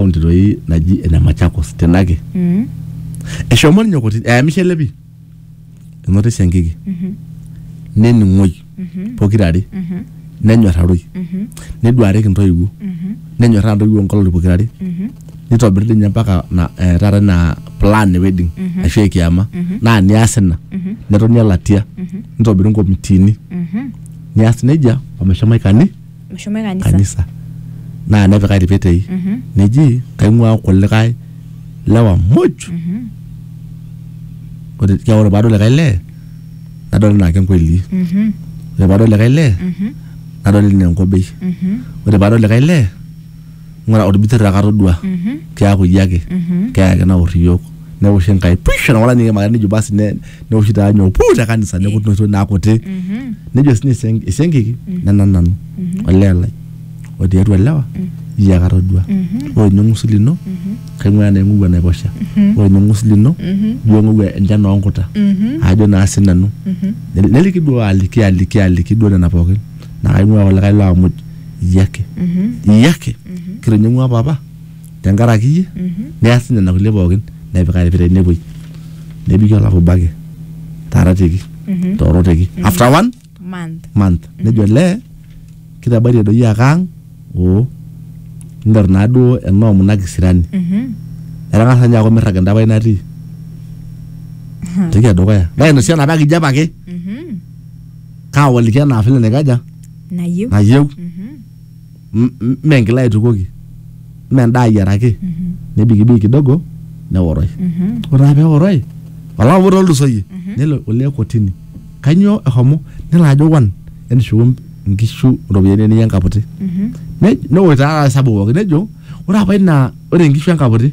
kaunti doi naji ene Machakos tenake Mm. eshomo ninye kotini eyamishe ele pii enoto esiankiki Mhm. nening'oi Mhm. pokirare Mhm. nenyorraroi Mhm. neduareki intoiwuo Mhm. nenyorraa intoiwuo nkolong'i pokirare Mhm. nitobiri dii ninye mpaka na eh, taata ina plan e wedding Mhm. ashu ekiama Mhm. naa nias ina Mhm. netoni elatia Mhm. nitobiri nkomitiini Mhm. nias nejia omeshomo aikani Meshomoe kanisa. kanisa naa nepika ilpetei Mhm. neji kaing'uaa kulikae lewa muj Mhm. ore kia ore paadol likae lee nadol enaa kenkoili Mhm. ore paadol likae lee Mhm. nadol enaa enkobei Mhm. ore paadol likae lee ng'ura olbitir ake atodua keaku iyie ake keya ake naor iyiook neosh enkai pish enawala ninye kemaka nejo basi ne- neoshi taa nyoo puu te kanisa neku noto naa kuti nejo sinye esiank- esiankiki nena nanu olee lai otii atua ilewa iyie ake atodua ore ninye ng'usi lino kaing'ua enaa ing'ou enaiposha ore ninye ng'usi lino ijo ing'ou enchan oonkuta ajo naa sinanu neliki duo aliki aliki aliki duo nena pookin naa kaing'ua kulikae laamuj iyie ake iyie ake kitining'ua papa tenkaraki iyie neas nena kulie pookin nepika irpira ine wuei nebiki olapa obo ake taaratieki tooroteki after one month month nejo olee kitabaitie doi ake ang oo niter naaduo enoomu ina kisirani etang'asa ninye aaku emirrag enda pae natii entoki edukuya nainosie enapa kijape ake kaawaliki enaa vile naikaja nayieu nayieu Mhm, m- m- mme enkila aitukuoki mme endaa ayiaraki mhm, nebikibiki kidogo neoroi mhm, ore taa peoroi olapa obo tolulusoyie Mhm. nelo olee kotini kanyoo ehomo nelo ajo wan entushuku nkishu iropiyiani eniya enkaputi mhm, Ne- neosh taa taata hesabu pooki nejo ore apa ina ore nkishu enkaputi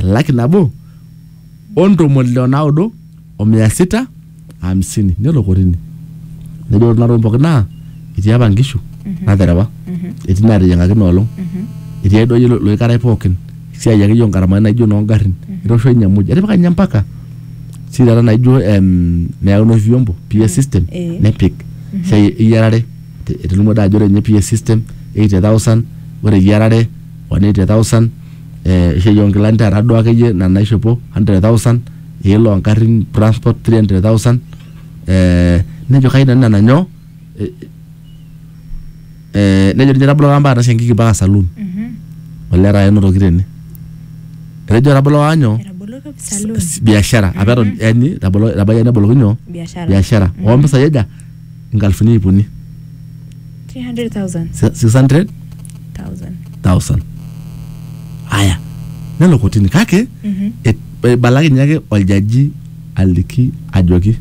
elaki nabo o ntomoni ile o naudo o mia sita hamsini nelo kotini nejo ore kuna tokitin pookin naa etii apa nkishu naterewa etii naateyiang'aki ina olong etii ai duayie loikarai pookin esiai akeyie ongaramani naijo noongarrin etoosho ninye muj etipika ninye mpaka si taata naijo em, neyau inoshi vyombo PA system Eh. nepik esiai eyiarare te- etolimuo taa ajo ore ninye PA system 80000 ore eyiarare 180000 eh, esiai onkilani taata duo akeyie ina naishopo 100,000 esiai loo ngarrin transport 300,000 eh, nejo kai nanu nena nyoo eh, eh, nejo ninye tabolo kamba atas enkiki mpaka saloon olee taata enotoki tene etejo tabolo waanyo Etabolo kap- saloon. biashara apa eton yani tabolo etabaikia neboloki nyoo biashara biashara ompisai aja nkalifuni iip uni 300,000. 600 Thousand. thousand haya nelo kotini kake Mhm. et- eibalakinye ake oljaji aliki ajoki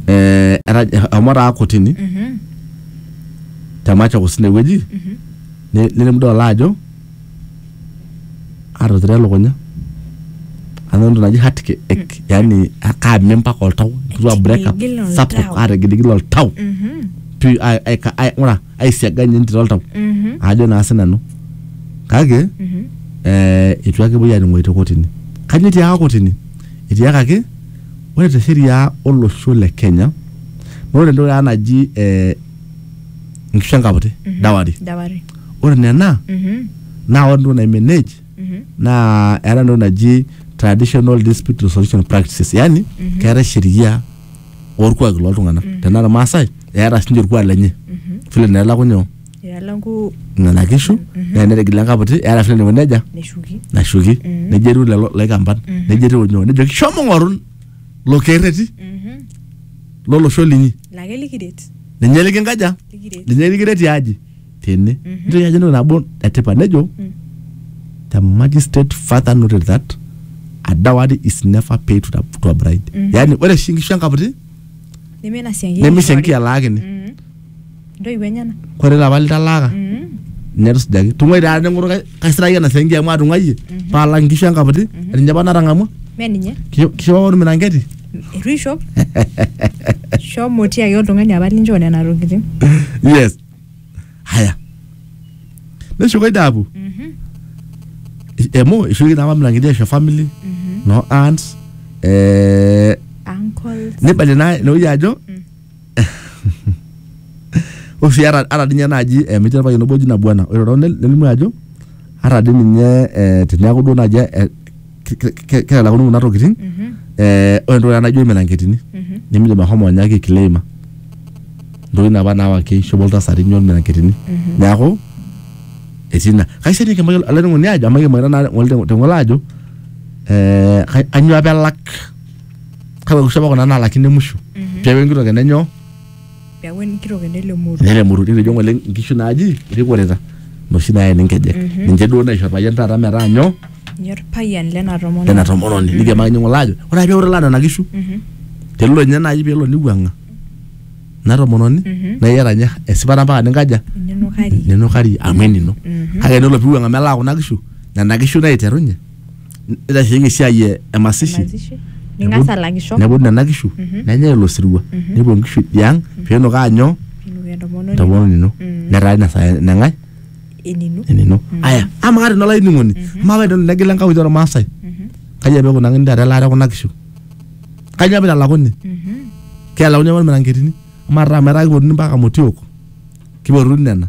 eh, era- eshomo taa kotini Mhm. te Machakos inewueji Mhm. ne- nelimu dol ajo atuturo elukunya anoto entoki naji heart ache yani kaame mpaka oltau etu a break up Etigil oltau. sapuk ategiligil oltau Mhm. pi ai- ai- ka- ai- ng'ura aisiaga ninye entito oltau Mhm. ajo naa sinanu kake Mhm. eh, itu ake epuoi anining'oyu te kotini kajo etiaka kotini etiakaki ore te sheria olosho le kenya na ore entoki taata naji eh, nkishu enkaputi Mhm. dawari dawari ore nena Mhm, naa ore entoki naimanage mhm, naa eeta entoki naji traditional dispute resolution practices yani Mhm. keetae sheria orkuaki loltung'anak Mhm. tenaa irmaasai eeta sinche orkuak lenye mhm. vile naa elakunyo ilalangu nena kishu Mhm. naa enetigila enkaputi eeta vile naiko nejia neshuki nashuki Mhm. nejo etiu lelo laikamban Mhm. nejo etiu nyoo nejoki shomo ng'oru lo kerreti Mhm. lolosho linyi lake likiret ninye likinkaja likiret ninye likiret tiaji tene Mhm. nitoki ajo entoki nabo etipat nejo Mm. the magistrate further noted that a dowry is never paid to, the, to a bride Mhm. yaani ore oshi nkishu enkaputi neme ina sianki nemisho enkialaakini Mhm. ntoiwuo enyena kore lapa litalaaka Mhm. netusujaki tung'uai taa neng'oru kai- kaisiraki ena sianki amu atung'uayie Mhm. paalak nkishu enkaputi Mhm. ninye apa natang'amua me ninye kisho apa ormirangeti eitu ishop shomo tiaki oltung'ani apa linchoo nena tokitin yes haya neshuko idapu emu ishuki naa mamlangidi aisho family no aunts eh, uncle nibalie naa inewueji ajo Ore sii ata ata ninye naaji eh metii orpayian obo oji Nabuana ore too nel nelimu ajo ata dii ninye eh teniaku duo naaji eh ke ke kelakuni kuna tokitin eh ore entoki naijo irmiranketini nemidim ahomo ninye ake ae claima intokitin apa nawa keishopo iltasati nyoo irmiranketini niaku etii ina kaisilig naaji nanu olainining'oni ajo amayianaki naa ng'ole te ng'ole ajo eh kanyio apa elak. kake ore oshiake kuna naalakino emusho peeku enkitok ene nyoo peeku enkitok ene lemurua nelemuru nitejo ng'ole inkishu naaji irikorita inoshi naeni inkejek ninche duo naisho orpayian taata metaa nyoo ninye orpayian lena lena tomononi tomononi nikiyamakinye ng'ole aajo ore ake peeku italaa nena kishu Mhm, tenelo ninye naaji peelo niwuang'a ina tomononi Mhm. naa iyata ninye esipata mpaka ninkaja ninukari ninukari amu enino Mhm. kake tenelo piwuang'a melaa kuna kishu nena kishu naiterunye nitasheyie esiai e- e masishi Mazishi. Ning'as alakisho. nepuo nena kishu nenyae ilo sirua nepuo nkishu idiang piinok aanyo Pinuki entomononi. entomononi ino Mm. netaa ina saa eneng'ae Enino. enino aya ama kata inola ining'oni amaa paidol negila enkauli ormaasai kaji apa ikunakini taata elaata ekuna kishu kaji apa italakuni Mhm. kealauni apa irmiranketini amaa taata metaa kipotuni mpaka motiok kipotuni nena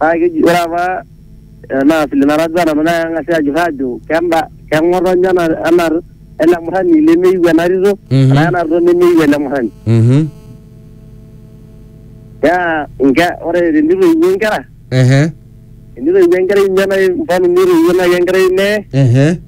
Naa keji ore apa ena vile natadua nanu naa keng'asi aajurr aajo kenda keng'otonye ena ena ele murrani lemeyiu ena tito Mhm. enaa ena tito nemeyiu ele murrani. Mhm. Naa nke ore tenitoiwuo inkera Ehe. tenitoiwuo enkerai ninye nai mfano nitoiwuo nai enkerai olee Ehe.